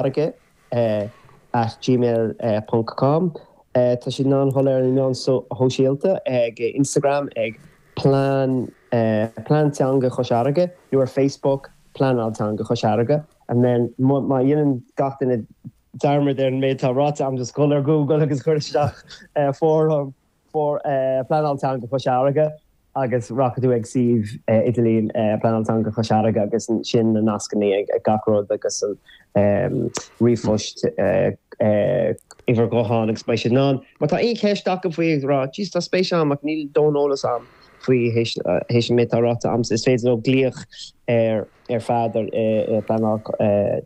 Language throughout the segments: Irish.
farraige at gmail ponc com Tá siad an-shoiléir ar na meáin shóisialta, ag Instagram ag Plean Plean Teanga Chois Fharraige nó ar Facebook, Pleanáil Teanga Chois Fharraige. And then má dhéanann gach duine dearmad ar an méid atá ráite a'm, just dhul ar Google agus cur isteach fóram. for Pleanáil Teanga Chois Fharraige agus rachaidh tú ag suíomh idirlín Pleanáil Teanga Chois Fharraige agus ansin na nascanna ag gach rud agus an ríomhphost uimhir ghutháin agus beidh siad in ann. Má tá aon cheist acu faoi ag rá jeez tá spéis a'm ach níl dóthain eolas a'm faoi théis an méid atá ráite a'm is féidir leo glaoch ar fad ar Pleanáil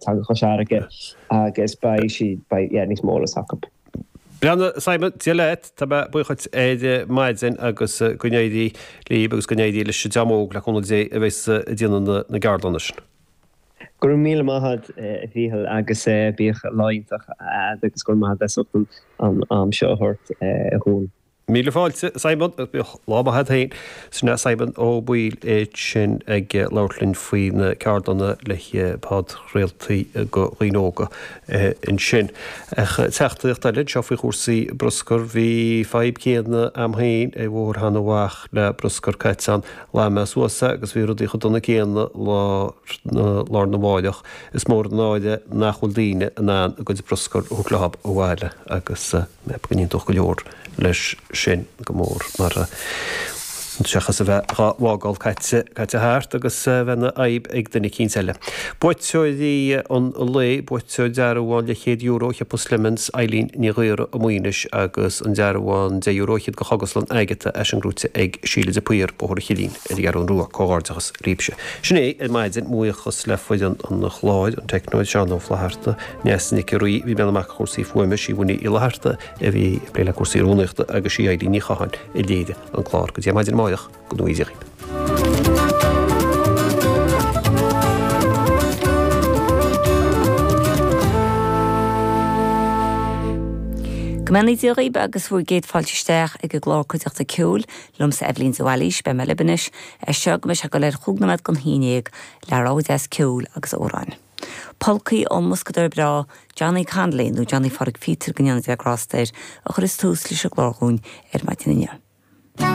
Teanga Chois Fharraige agus beidh siad beidh yeah níos mó eolas acu. Bhuel, a Simon, Dia leat, tá mé buíoch dhuit ar maidin agus go n-éirí libh agus go n-éirí leis an dream óg, le cúnamh Dé, a bheas ag déanamh na gceardlanna sin. Go raibh míle maith agat, a Mhíchil, agus bíodh lá iontach a'd agus go raibh maith agat as ucht an am seo a thabhairt dhúinn. Míle fáilte, a Simon. Lá maith a'd féin. Sé Simon Ó Baoill é sin ag labhairt linn faoi na ceardlanna le podchraoltaí go dhaoine óga ansin. Ach teachtaíocht eile anseo faoi chúrsaí bruscair, bhí fadhb céanna a'm féin ar Bhóthar Sheanadh Mhach le bruscar caite ann. Ghlan mé suas é agus bhí rudaí chomh dona céanna lá arna mháireach. Is mór an náire nach bhfuil daoine in ann a gcuid bruscair a thabhairt leo abhaile agus. Go n-aontódh go leor, leis sin, go mór mar, seachas a bheith dhá bhfágáil caite thart agus a bheith ina fhadhb ag duine eicínt eile. Buaiteoirí an lae, buaiteoir dearbhán leathchéad euro go shiopa Slemons, Eilín Ní Ghaora as Maínis agus an dearbhán deich euro fhichead go Chógaslann Agatha, tá sin gnóite ag Síle de Paor, Bóthar an Chillín, ar an gCeathrún Rua. Comhghairdeachas daoibhse. Sin é ar maidin. Buíochas le foireann an chláir, an teicneoir Seán Ó Flaithearta, Neasa Nic an Rí a bhí ag breathnú amach go chúrsaí fuaime, sí Winnie Uí Fhlatharta, a bhí ag plé le cúrsaí rúnaíochta agus sí Eibhlín Ní Chatháin a léirigh an clár go dtí an mhaidin amáireach go ngnóthaí Dia dhíb. Go mbeannaí Dia dhíb agus bhur gcéad fáilte isteach ag an gclár cuideachta ceoil liomsa Eibhlín de Bhailís, beidh mé libh anois, as seo go mbeidh sé ag goil ar chúig nóiméad gon haon déag, le rogha deas ceoil agus amhráin. Polcaí ón mboscadóir breá Johnny Connolly, nó Johnny Pháraic Phíotair go ndéana Dia grásta air, a chuireas tús leis an gclár dhúinn ar maidin inniu.